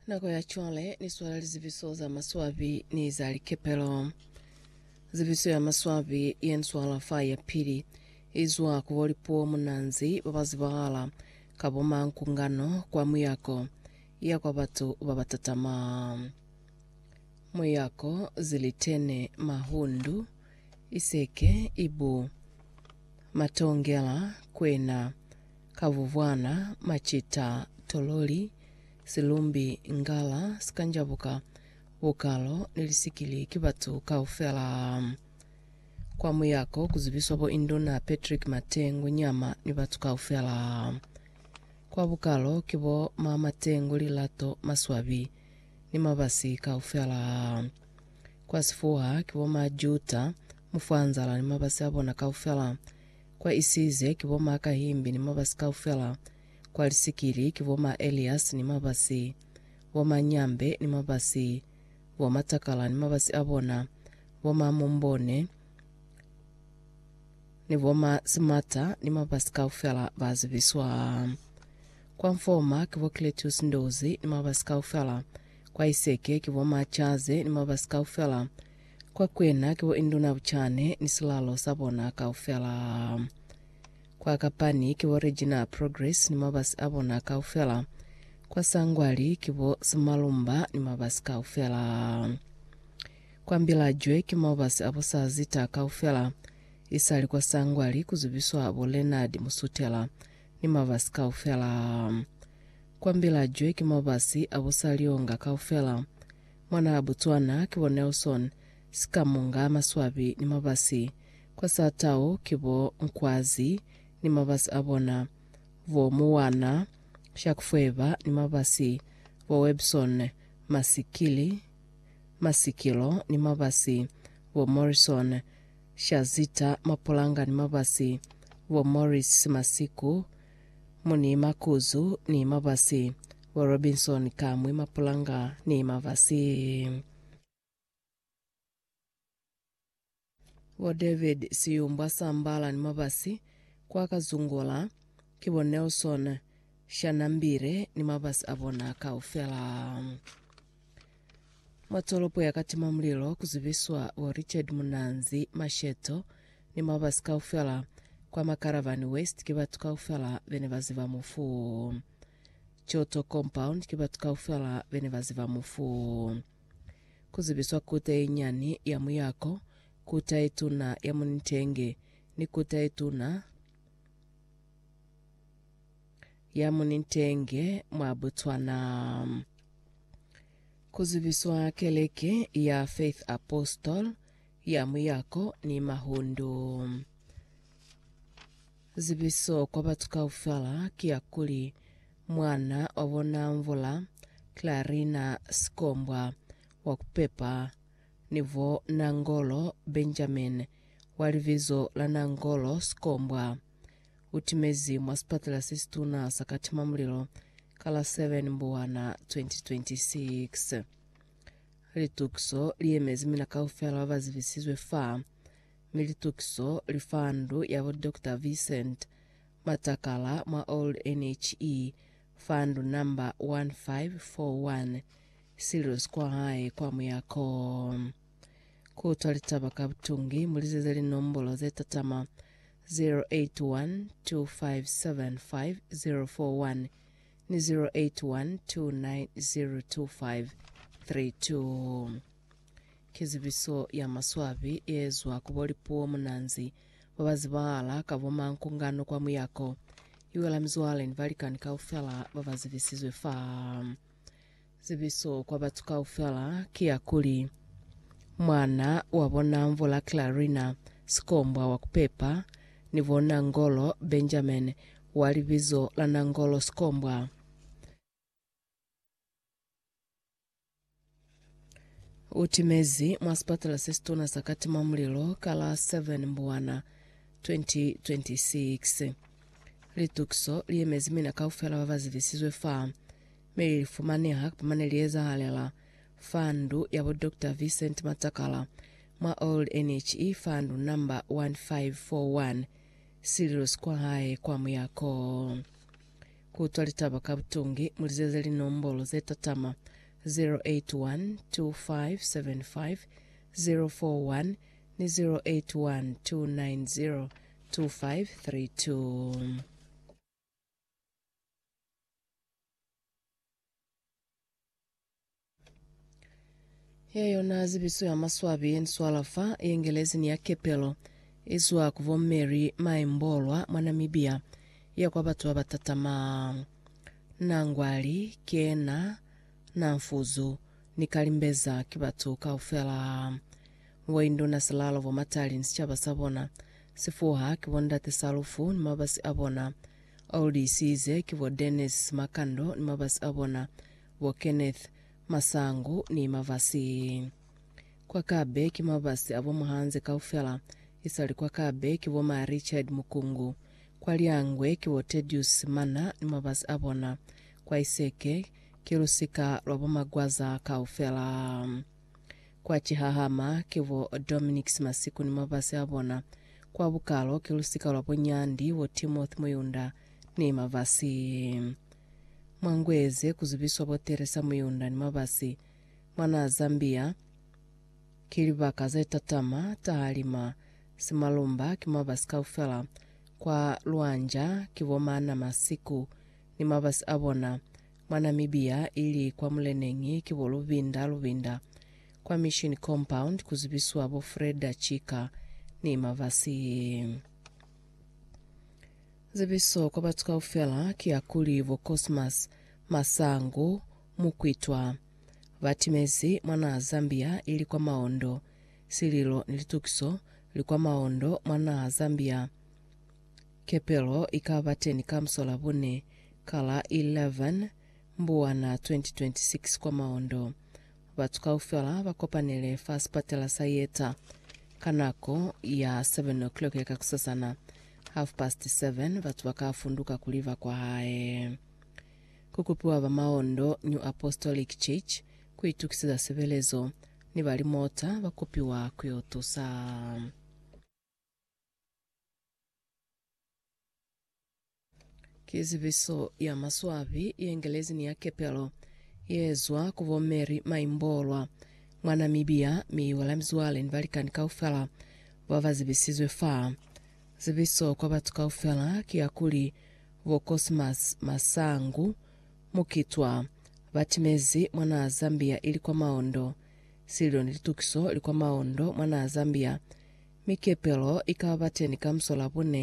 Nako ya cwale ni swala lizibiso za maswabi ni za likepelo. Zibiso ya maswabi ye ni swala fa ya pili izwa ku bo lipuo munanzi ba ba zibahala ka bo mankungano kwa muyako ya kwa batu ba ba tatama. Muyako, zilitene, mahundu, iseke, ibu, matongela, kwena, Kabubwana, macita, tololi, silumbi, ngala, sikanjabuka, bukalo, ni lisikili ki batu kaufela. Kwa muyako kuzibiswa bo Induna Patrick Matengu Nyama ni batu kaufela. Kwa bukalo ki bo Ma Matengu Lilato Maswabi ni Mabasi kaufela. Kwa sifuha ki bo Ma Juta Mufwanzala ni mabasi abona kaufela. Kwa Isize ki bo ma Kahimbi ni Mabasi kaufela, kwa Lisikili ki bo ma Elias ni Mabasi, bo ma Nyambe ni Mabasi, bo ma Takala ni Mabasi a bona, bo ma Mumbone ni bo ma Simata ni Mabasi kaufela ba zibiswa. Kwa Mfoma ki bo Cletus Ndozi ni Mabasi kaufela, kwa Iseke ki bo ma Chaze ni Mabasi kaufela, Kwa kwena ki bo induna bucane ni silalo sa bona kaufela. Kwa kapani ki bo Regina Progress ni mabasi a bona kaufela. Kwa sangwali ki bo Simalumba ni mabasi kaufela. Kwa mbilajwe ki mabasi a bo sa zita kaufela. Isali kwa sangwali ku zubiswa bo Leonard Musutela ni mabasi kaufela. Kwa mbilajwe ki mabasi a bo sa lionga kaufela. Mwanaa Botswana ki bo Nelson Sikamunga Maswabi ni mabasi kwa saa tau ki bo Nkwazi ni mabasi a bona, bo Moana Shakufweba ni mabasi, bo Webson Masikili Masikilo ni mabasi, bo Morrison Shazita Mapulanga ni mabasi, bo Morris Masiku Mu ni makuzu ni mabasi. Bo Robinson ka mwi mapulanga ni mabasi. Bo David Siyumbwa Sambala ni mabasi kwa Kazungula. Ki bo Nelson Shanambire ni mabasi a bona kaufela. Mwa tolopo ya Katima Mulilo ku zibiswa bo Richard Munanzi, Masheto, ni mabasi kaufela. Kwa Makaravani West ki batu kaufela bene ba ziba mufu wo. Choto Compound ki batu kaufela bene ba ziba mufu wo. Ku zibiswa Kuta ye Nyani ya Muyako, Kuta ye Tuna ya Munintenge ni Kuta ye Tuna Ya mu nitenge mwa Botswana. Ku zibiswa Keleke ya Faith Apostol ya Muyako ni Mahundu. Zibiso kwa batu kaufela ki ya kuli mwana wa bona Mvula Clarina Sikombwa wa ku pepa ni bo Nangolo Benjamin wa libizo la Nangolo Sikombwa u timezi mwa sipatela se situna sa katimamulilo ka la 7 Mbuwana 2026. Litukiso li yemezi mina kaufela ba ba zibisizwe fa, mi litukiso li fa ndu ya bo Doctor Vincent Matakala mwa Old NHE fa ndu namba 1541 Sirius kwa hae kwa Muyako. Kutwa litaba ka butungi, mulizeze linombolo ze tatama 0812575041 ni 0812902532. Ki zibiso ya maswabi ye ezwa ku bo lipuo munanzi ba ba zibahala ka bo mankungano kwa muyako. I wela mizwale ni balikani kaufela ba ba zibisizwe fa. Zibiso kwa batu kaufela ki ya kuli, Mwana wa bo Namvo la Clarina, sikombwa wa kupepa, ni bo Nangolo Benjamin, wa libizo la Nangolo Sikombwa. U timezi mwa sipatala se situna sa Katima Mulilo ka la 7 Mbwana 2026. Litukiso li yemezi mina kaufela ba ba zibisizwe fa. Mi li fumaneha kapa mane li ezahalela fa ndu ya bo Doctor Vincent Matakala mwa Old NHE fa ndu namba 1541, sililo si kwa hae kwa Muyako. Ku utwa litaba ka butungi, mu lizeze linombolo ze tatama 0812575041 ni 0812902532. Ye yona zibiso ya maswabi ye ni swala fa, ye Ngelezi ni ya kepelo, i zwa ku bo Mary Mai Mbolwa mwa Namibia, ya kwa batu ba ba tatama Nangwali, Kena, Namfuzu ni Kalimbeza ki batu kaufela. Ngo induna silalo bo matali ni sicaba sa bona, sifuha ki bo ndate Salufu ni mabasi a bona, old isize ki bo Dennis Simakando ni mabasi a bona, bo Kenneth Masangu ni mabasi. Kwa Kabe ki mabasi a bo Muhanze kaufela, isali kwa Kabe ki bo ma Richard Mukungu, kwa Lyangwe ki bo Tedious Simana ni mabasi a bona, kwa Iseke ki lusika lwa bo Magwaza kaufela. Kwa cihahama, ki bo Dominics Masiku ni mabasi a bona. Kwa bukalo, ki lusika lwa bo Nyandi, bo Timothy Muyunda, ni mabasi. Mwa ngu ye ze, ku zubiswa bo Theresa Muyunda ni mabasi. Mwa naha Zambia, ki libaka ze tatama, taha lima, simalumba, ki mabasi kaufela. Kwa Luanja, ki bo Maana Masiku ni mabasi a bona. Mwa Namibia, ili kwa muleneñi ki bo Lubinda Lubinda, kwa Mission Compound ku zibiswa bo Freda Chika ni Mavasi. Zibiso kwa batu kaufela ki ya kuli bo Cosmas Masangu Mukwitwa ba timezi mwa naha Zambia ili kwa maondo. Sililo ni litukiso li kwa maondo mwa naha Zambia. Kepelo ikaba teni ka musolabune ka la 11 Mbuwana 2026 kwa Maondo. Batu kaufela ba kopanele fa sipatela sa Yeta ka nako ya 7:00 ya kakusasana. Half past 7 batu ba ka funduka kuli ba kwa hae. Ku kupiwa ba Maondo New Apostolic Church ku itukiseza sebelezo ni ba limota ba kupiwa ku yo tusa. Ki zibiso ya maswabi yengelezi ni ya kepelo yeezwa ku bo Mary Maimbolwa, mwa Namibia, mi iwela mizwale ni balikani kaufela ba ba zibisizwe fa. Zibiso kwa batu kaufela ki ya kuli bo Cosmas Masangu Mukitwa batimezi mwanaa Zambia ili kwa maondo. Sililo ni litukiso li kwa maondo mwa naa Zambia. Mi kepelo i ka ba teni ka musola bune